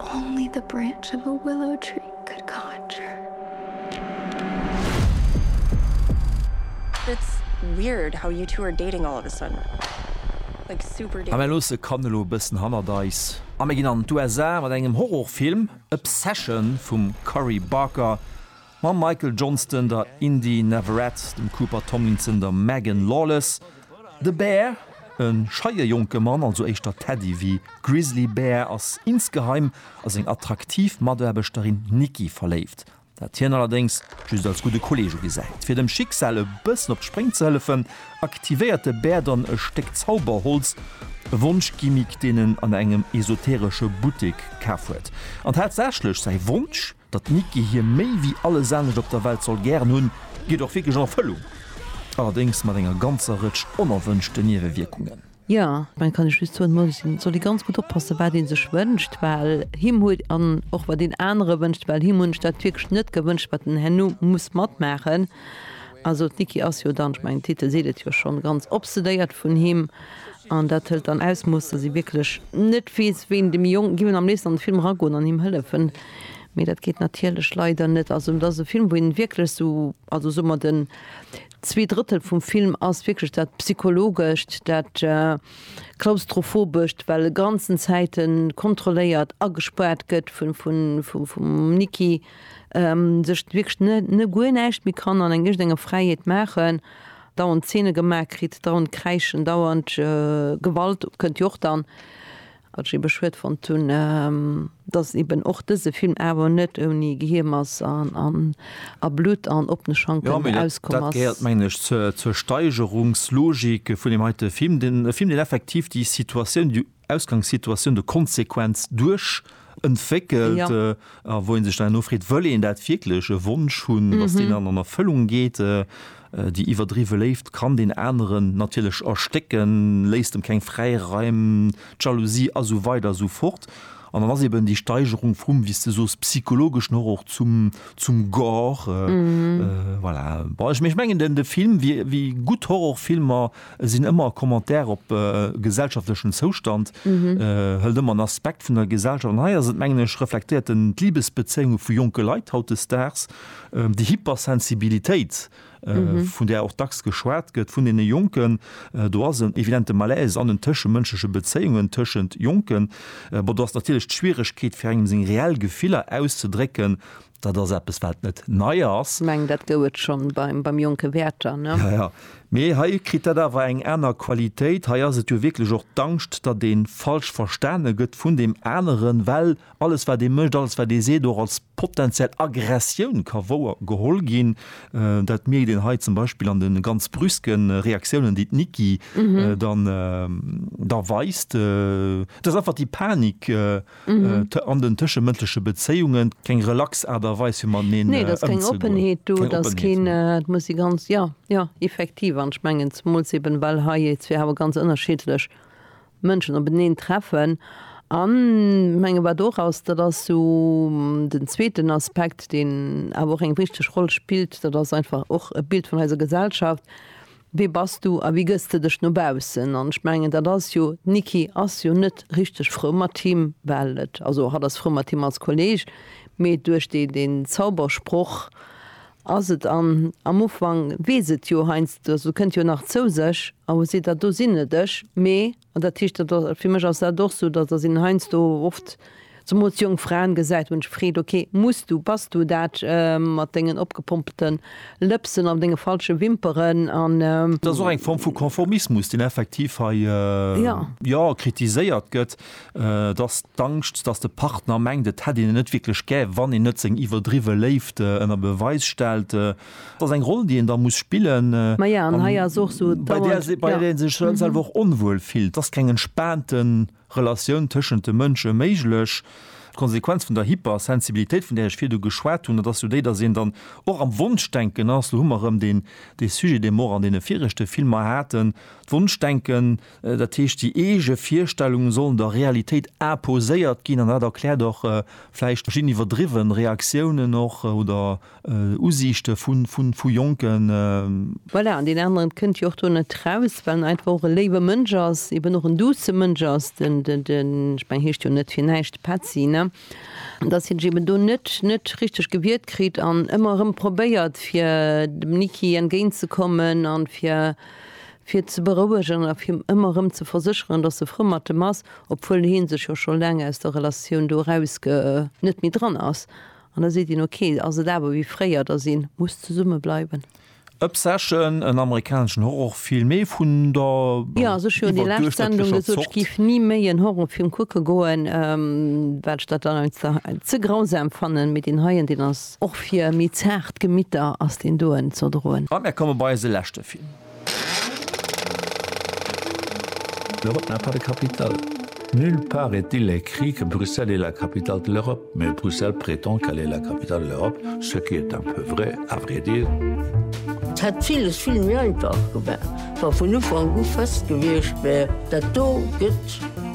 Only the branch of a willow tree could conjure. It's weird how you two are dating all of a sudden. Like super dating. A mir loosse Cannes elo e bëssen hannert eis. A mir ginn an d'USA mat engem Horrorfilm, Obsession vum Cory Barker. Mam Michael Johnston, der Indy Neverett, dem Cooper Tomlinson, der Megan Lawless, de Bär, e scheie jonke Mann, also éischter Teddy wéi Grizzly Bear, ass insgeheim a seng attraktiv Mataarbechterin Nikki verléift, dat hien allerdéngs just als gudde Kolleeg ugesäit. Fir dem Schicksal e bëssen op d'Spréng ze hëllefen, aktivéiert de Bär dann e Stéck Zauberholz, e Wonschgimmick, deen en an engem esoteresche Buttek kaf huet. An tatsächlech, säi Wonsch Datt d'Nicky hie méi wéi alles anescht op der Welt soll gären hunn, geet och wierklech an Erfëllung, allerdéngs mat enger ganzer Rëtsch onerwënschten Niewewierkungen. Jo, dann kann ech just soen, Moll soll ee ganz gutt oppassen, wat ee sech wënscht, well him huet, an och wat een anere wënscht, well him hunn ech dat wierklech net gewënscht, wat en herno muss matmaachen. Also d'Nicky ass jo dann, ech mengen d'Titel seet et jo schonn, ganz obsedéiert vun him, an dat hëlt dann Ausmooss, datt ee wierklech net weess, wéi een dem Jong, gi mir am léifsten an de Film eragoen an him hëllefen. Mee dat geet natierlech leider net. Also dat ass e Film, wou een wierklech esou, also soe mer den zwee Drëttel vum Film ass wierklech dat Psychologescht, dat Klaustrophobescht, well e ganzen Zäiten kontrolléiert, agespaart gëtt vum Nikki, sech wierklech guer näischt méi kann an iergendenger Fräiheet maachen, dauernd Zeene gemaach kritt, dauernd kräischen, dauernd Gewalt kënnt jo och dann. Wat ech ebe schued fonnt hunn, dass eben och dëse Film awer net ouni Geheemes a Blutt an oppene Schanken auskomm ass. Jo, mä dat gehéiert, mengen ech, zur Steigerungslogik vun deem heite Film. E Film, deen effektiv déi Situatioun, déi Ausgangssituatioun, de Konsequenz duerch entwéckelt a wou ee sech dann herno freet, Wëll een dat wierklech? E Wonsch hunn, dass deen dann an Erfëllung geet? Déi iwwerdriwwe Léift kann deen aneren natierlech erstécken, léisst em keng Fräiraim, d'Jalousie a sou weider a sou fort. An dann ass eben déi Steigerung vum, wéi s de soos, psychologeschen Horror zum, zum Gore. Voilà. Bon, ech mengen den, de Film, wéi, wéi gutt Horrorfilmer sinn, ëmmer e Commentaire op e gesellschaftlechen Zoustand, hëlt ëmmer en Aspekt vun der Gesellschaft. An hei ass et, mengen ech, reflektéiert en d'Libesbezéiunge vu jonke Leit hautdesdaags. Déi Hypersensibilitéit, vun där och dacks geschwat gëtt vun deene Jonken, do ass en evidente Malaise an den tëschemënschleche Bezéiungen tëschent Jonken. Bon, do ass natierlech d'Schwieregkeet, fir engem seng reell Gefiller auszedrécken, dat ass eppes, wat net nei ass. Ech mengen, dat gouf et scho beim jonke Werther, ne? Jo, jo. Mee hei kritt dat awer eng aner Qualitéit. Hei ass et jo wierklech och d'Angscht, datt ee falsch verstane gëtt vun deem aneren, well alles wat ee mécht, alles wat ee seet och als potenziell Aggressioun ka wouer geholl ginn. Dat mierkt een hei zum Beispill an de ganz brüske Reaktiounen, déi d'Niki dann da weist. Et ass einfach déi Panik an den tëschemënschleche Bezéiungen, keng relax Aart a Weis fir mateneen ëmzegoen. Nee, et ass keng Oppenheet do, et ass keen, et muss ee ganz, jo, jo, effektiv. An ech mengen zemools eben, well hei, et si awer ganz ënnerschiddlech Mënschen op eneen treffen an menge wat och ass, dat ass esou den zweeten Aspekt, deen awer och eng wichteg Roll spillt, dat ass einfach och e Bild vun eiser Gesellschaft, Wee bass du a wéi gëss de dech no baussen? An ech mengen, dat ass jo, d'Niki ass jo net richteg frou mat him, well et, also hatt ass frou mat him als Kolleeg, mee duerch deen Zaubersproch, Ass et an, am Ufank weess et jo heiansdo, also kënnt jo nach zou sech a wou seet der, do sinn et ech, mee, an dat heescht, dat ass, fir mech ass dat och sou, dass, dass een heiansdo oft, zemools jonk Fraen gesäit, wou een sech freet, ok, muss du, bass du dat mat dengen opgepompte Lëpsen an denge falsche Wimperen an. Dat ass och eng Form vu Konformismus, deen effektiv hei, jo, kritiséiert gëtt. Et ass d'Angscht, datt de Partner mengt, et hätt een en net wierklech gär, wann een net seng iwwerdriwwe Léift ënner Beweis stellt. Et ass eng Roll, déi een da muss spillen an bei där een sech selwer och onwuel fillt. Et ass keng entspaante Relatioun tëschent de Mënsche méiglech. D'Konsequenz vun der Hypersensibilitéit, vun där ech virdu geschwat hunn, dat ass jo déi, datt een dann och am Wonschdenken ass. Elo hu mer erëm dee Sujet, dee mer och an deene viregte Filmer haten, d'Wonschdenken. Dat heescht, déi eege Virstellungen sollen der Realitéit imposéiert ginn an dat erkläert och vläicht verschidden iwwerdriwwe Reaktiounen och oder Usiichte vu Jonken. Voilà, an deen aneren kënnt jo och do net raus, well en einfach och e léiwe Mënsch ass, eben och en douce Mënsch ass, den, ech mengen, heescht jo net fir näischt Petzi, ne, an dass hie sech eben do net, net richteg gewiert kritt an ëmmer erëm probéiert fir dem Niki entgéint ze kommen an fir, fir ze berouegen a fir him ëmmer erëm ze versécheren, dass e frou mat em ass, obwuel hee sech jo scho laang aus der Relatioun do eraus ge net méi dran ass. An da seet een, ok, ass et awer wéi fréier, dass ee muss zesumme bleiwen. Obsession, en amerikaneschen Horrorfilm, ee vun der Jo, also ech hu jo déi lescht Sendung iwwerduerchschnëttlecher gesot, ech Zort. géif ni méi en Horrorfilm kucke goen, well ech dat dann einfach ze, ze grausam fannen, mee deen heien, deen ass och fir méi zaart Gemitter ass deen doen ze erdroen. A mir komme bei eise leschte Film. L'Europe n'a pas de capitale. Nulle part est-il écrit que Bruxelles est la capitale de l'Europe, mais Bruxelles prétend qu'elle est la capitale de l'Europe, ce qui est un peu vrai, à vrai dire. Et hätt villes vill méi einfach gewar, wa vun Ufank u fest gewiescht wär, dat do gëtt.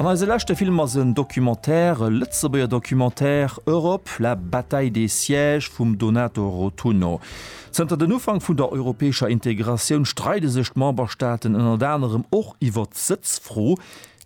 An eise leschte Film ass en Documentaire, e Lëtzebuerger Documentaire, Europe, la bataille des sièges vum Donato Rotunno. Zënter den Ufank vun der europäescher Integratioun streide sech d'Memberstaaten ënnert anerem och iwwert d'Sëtzfro,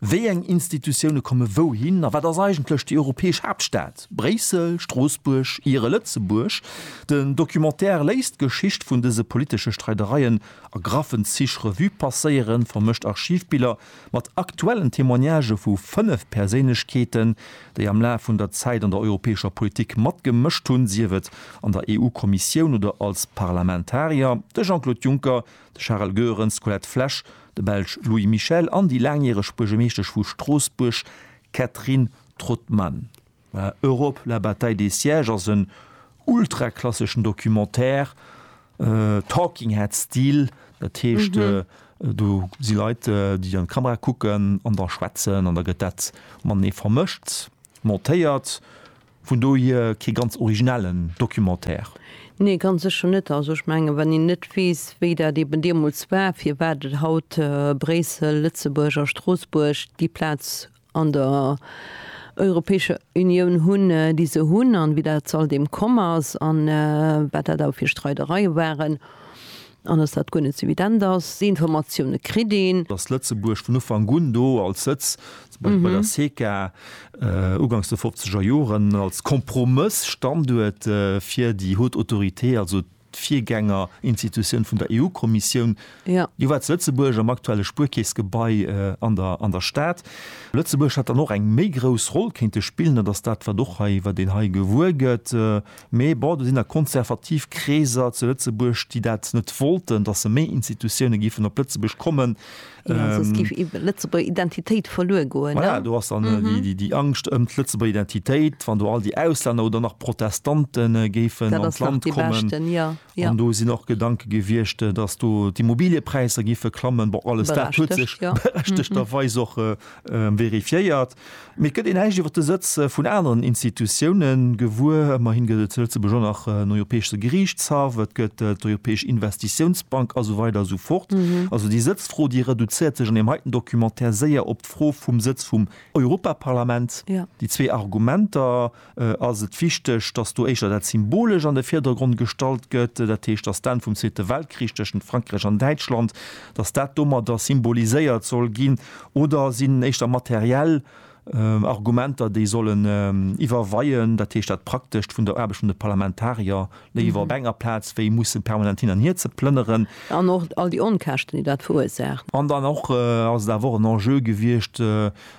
Wéi eng Institutioune komme wouhin a wat ass eigentlech déi europäesch Haaptstad? Bréissel, Stroossbuerg, Ihre, Lëtzebuerg? Den Documentaire léisst d'Geschicht vun dëse politesche Streidereien A graffen Zich Revue passéieren vermëscht Archivbiller mat aktuellen Témoignagë vu fënnef Perséinlechkeeten, déi am Laf vun der Zäit an der europäescher Politik matgemëscht hunn, sief et an der EU-Kommissioun oder als Parlamentarier, de Jean-Claude Juncker, de Charel Goerens, d'Colette Flesch, de Belsch Louis Michel an déi laangjäreg Buergermeeschtesch vu Stroossbuerg Catherine Trautmann. Europe, la bataille des sièges ass en ultraklasseschen Documentaire, Talking Head Stil, dat heescht do si Leit, déi an d'Kamera kucken an da schwätzen an da gëtt dat matenee vermëscht, montéiert. Vun dohier kee ganz originellen Documentaire. Nee, ganz sécher net. Also ech mengen, wann een net weess, wéi dat eeben deemools war, firwat et haut Bréissel, Lëtzebuerg a Stroossbuerg déi Plaz an der Europäescher Unioun hunn, déi se hunn, an wéi dat all deem komm ass, an wat dat awer fir Streidereie waren, an dass dat guer net esou evident ass. Déi Informatioune kritt een. Dass Lëtzebuerg vun Ufank un do als Sëtz, zum Beispill bei der CECA ugangs de fofzeger Joren, als Kompromëss-Standuert fir déi Haute Autorité, also d'Virgängerinstitutioun vun der EU-Kommissioun, jo war zu Lëtzebuerg am aktuelle Spuerkeessgebai an der Stad. Lëtzebuerg hätt dann och eng méi grouss Roll kéinte spillen, dat ass dat wat och hei, wat een hei gewuer gëtt. Mee bon, do sinn der konservativ Kreeser zu Lëtzebuerg, déi dat net wollten, datt se méi Institutioune géifen op Lëtzebuerg kommen. Jo, soss géif ee Lëtzebuerger Identitéit verluer goen, ne? Voilà, do ass dann déi Angscht ëm d'Lëtzebuerger Identitéit, wann do all déi Auslänner oder nach Protestante géifen an d'Land kommen. An do sinn och Gedanke gewiescht, dass do d'Immobiliepräisser géife klammen. Bon, alles dat huet sech berechtegterweis och verifiéiert. Mee et gëtt een näischt iwwer de Sëtz vun aneren Institutioune gewuer. Ëmmerhi gëtt et zu Lëtzebuerg och nach en Europäesche Geriichtshaff, et gëtt d'Europäesch Investitiounsbank a sou weider a sou fort. Also déi Sëtzfro, déi reduzéiert sech an deem heiten Documentaire séier op d'Fro vum Sëtz vum Europaparlament. Déi zwee Argumenter ass et wichteg, dass do éischter dat Symbolescht an de Virdergrond gestallt gëtt, dat heescht, dass d'Enn vum Zweete Weltkrich tëschent Frankräich an Däitschland, dass dat domadder symboliséiert soll ginn? Oder sinn éischter materiell Argumenter, déi sollen iwwerweien, dat heescht dat Praktescht vun der Aarbecht vun de Parlamentarier, léiwer op enger Plaz wéi mussen permanent hin an hier ze plënneren? An och all déi Onkäschten, déi dat verursaacht. An dann och ass et awer och en Enjeu gewiescht,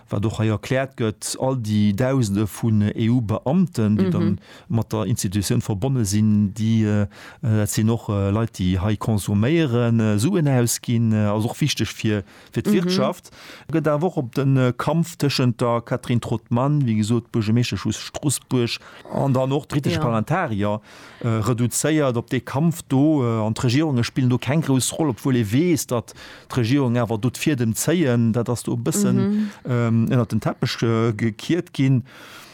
wat och hei erkläert gëtt, all déi Dausende vun EU-Beamten, déi dann mat der Institutioun verbonne sinn, déi, dat sinn och Leit, déi hei konsuméieren, Suen ausginn, also och wichteg fir d'Wirtschaft. Et gëtt awer och op de Kampf tëschent der Catherine Trautmann, wéi gesot, Buergermeeschtesch vu Stroossbuerg, an dann och d'britesche Parlamentarier reduzéiert op dee Kampf do. An d'Regierunge spillen do keng grouss Roll, obwuel ee weess, datt d'Regierungen awer do d'Fiedem zéien. Dat ass do e bëssen ënnert den Teppech gekiert ginn.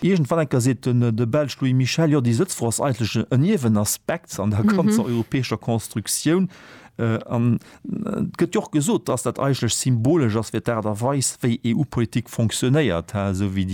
Iergendwann enker seet de Belsch Louis Michel, jo, déi Sëtzfro ass eigentlech e Niewenaspekt an der ganzer europäescher Constructioun. Et gëtt jo och gesot, dass dat eigentlech symbolesch ass fir d'Aart a Weis, wéi EU-Politik fonctionnéiert, hä, esou wéi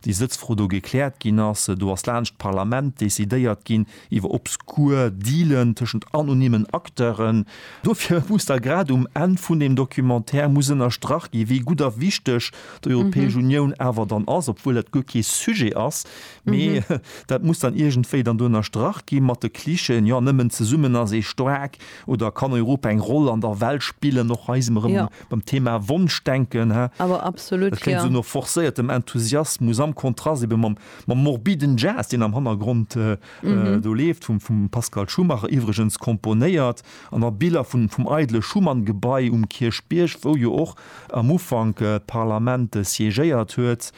déi Sëtzfro do gekläert ginn ass. Do ass laanscht d'Parlament decidéiert ginn iwwer obskur Dealen tëschent anonymen Acteuren. Dofir muss da grad um Enn vun deem Documentaire muss ënnerstrach ginn, wéi gutt a wichteg d'Europäesch Unioun awer dann ass, obwuel dat guer kee Sujet ass, mee dat muss dann iergendwéi dann do ënnerstrach gi mat de Clichéen, jo, nëmmen zesummen ass ee staark. Oder kann Europa eng Roll an der Welt spillen, och hei si mer erëm beim Thema Wonschdenken, he? Awer absolut, jo. Et kléngt esou no forcéiertem Enthusiasmus am Kontrast ebe mam, mam morbiden Jazz, deen am Hannergrond do leeft, vum, vum Pascal Schumacher iwwregens komponéiert, an a Biller vun, vum eidele Schuman-Gebai um Kierchbierg, wou jo och am Ufank d'Parlament siégéiert huet.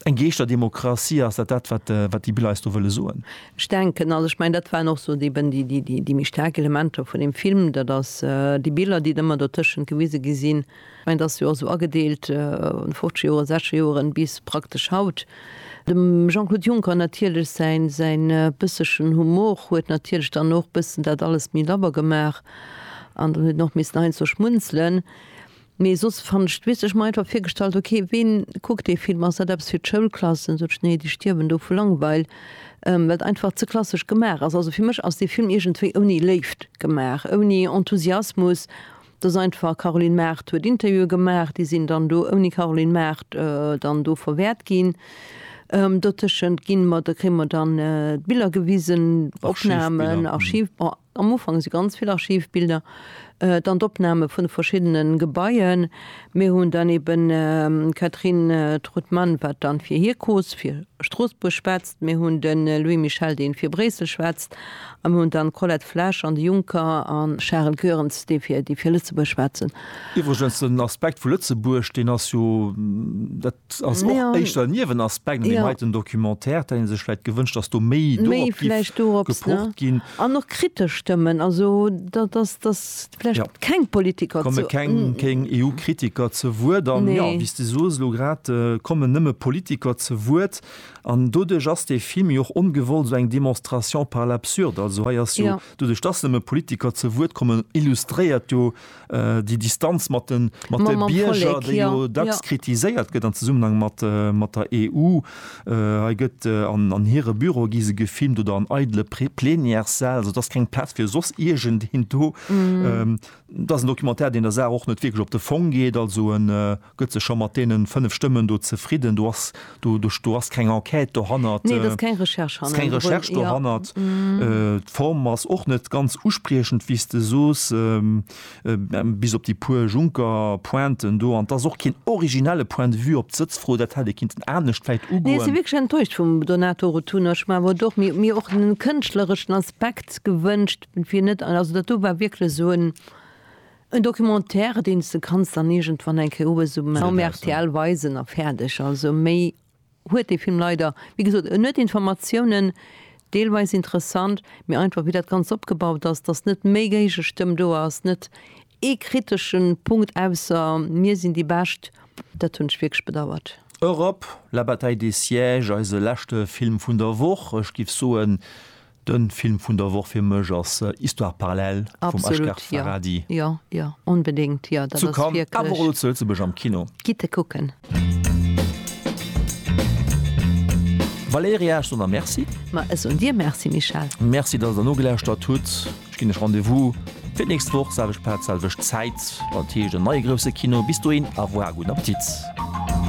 Eng geeschter Demokratie, ass dat dat, wat, wat déi Biller eis do wëlle soen? Ech denken, also ech mengen, dat waren och sou eben déi, déi, déi méi staark Elementer vun deem Film, dat ass déi Biller, déi ëmmer dertëschent gewise gi sinn. Ech mengen, dat ass jo och sou agedeelt, 50 Joren, 60 Joren bis praktesch haut. Dem Jean-Claude Juncker natierlech säin, säin bëssechen Humor huet natierlech dann och bëssen dat alles méi labber gemaach an dann huet en och missen heiansdo schmunzelen. Nee soss fannt ech d'Wiss, ech hu mer einfach virgestallt ok ween kuckt dee Film, ass dat eppes fir d'Schoulklassen, sot ech nee déi stierwen do vu Langweil, well et einfach ze klassesch gemaach ass. Also fir mech ass dee Film iergendwéi ouni Léift gemaach, ouni Enthusiasmus, et ass einfach Caroline Mart huet Interviewe gemaach, déi sinn dann do ouni Caroline Mart dann do verwäert ginn. Dotëschent ginn mer, kréie mer dann d'Biller gewisen, Opnamen, Archiv, bon. Am Ufank si ganz vill Archivbilder, dann d'Opname vun de verschiddene Gebaien. Mir hunn dann eben d'Catherine Trautmann, wat dann fir hir Cause fir Stroossbuerg schwätzt, mir hunn de Louis Michel, dee fir Bréissel schwätzt, a mir hunn dann d'Colette Flesch an de Juncker a Charel Goerens, déi fir Lëtzebuerg schwätzen. Iwwregens den Aspekt vu Lëtzebuerg, deen ass jo, dat ass och éischter en Niewenaspekt an deem heiten Documentaire. Dat hätt ee sech vläicht gewënscht, datt do méi dorop géif gepocht ginn. An och kritesch Stëmmen, also datt vläicht keng Politiker ze. Et komme keng EU-Kritiker ze Wuert. An jo, wéi s de soos, elo grad kommen nëmme Politiker ze Wuert. An doduerch ass dee Film jo och ongewollt esou eng Démonstration par l'absurde. Also hei ass jo, doduerch datt nëmme Politiker ze Wuert kommen, illustréiert jo, déi Distanz mat de Bierger, déi jo dacks kritiséiert gëtt am Zesummenhang mat der EU. Hei gëtt an hire Büro gi se gefilmt oder an eidele Plenièressäll, esou dass keng Plaz fir soss iergendeen do. Dat ass en Documentaire, deen der Saach och net wierklech op de Fong geet. Also en. Gëtt se scho mat deenen 5 Stëmmen do zefridden? Do ass, do, do, do ass keng Enquête dohannert, Nee, do ass keng Recherche ass keng hannendrun. Recherche Ja. dohannert. D'Form ass och net ganz uspriechend, wéi s de soos, bis op déi puer Juncker-Pointen do. An 't ass och keen originelle Point de vue op d'Sëtzfro. Dat hätt ee kinnten anescht vläicht Nee, ech si ugoen. wierklech enttäuscht vum Donato Rotunno. Ech hu mer awer do och méi, méi och en kënschtlereschen Aspekt gewënscht, fir net, also datt do war wierklech esou en, En Documentaire deens de kanns dann iergendwann eng Kéier uews um rtl weisen a fäerdeg. Also méi huet dee Film leider, wéi gesot en huet Informatiounen, deelweis interessant, mee einfach wéi dat Ganzt opgebaut ass, dass net méi Géigestëmm do ass, net ee kritesche Punkt ausser mir sinn déi Bescht, dat hunn ech wierklech bedauert. Europe, La bataille des sièges, eise leschte Film vun der Woch. Ech giff soen, Den Film vun der Woch fir mech ass Histoire parallèle vum Asghar Farhadi. Zu Cannes awer och lo zu Lëtzebuerg am Kino. Valéria, ech soen der Merci. Merci, dass der nogelauschtert hutt. Ech ginn lech Rendez-vous fir d'nächst Woch, selwecht Plaz, selwecht Zäit, wann et heescht en neie Grousse Kino. Bis dohin, au revoir a gudden Appetit.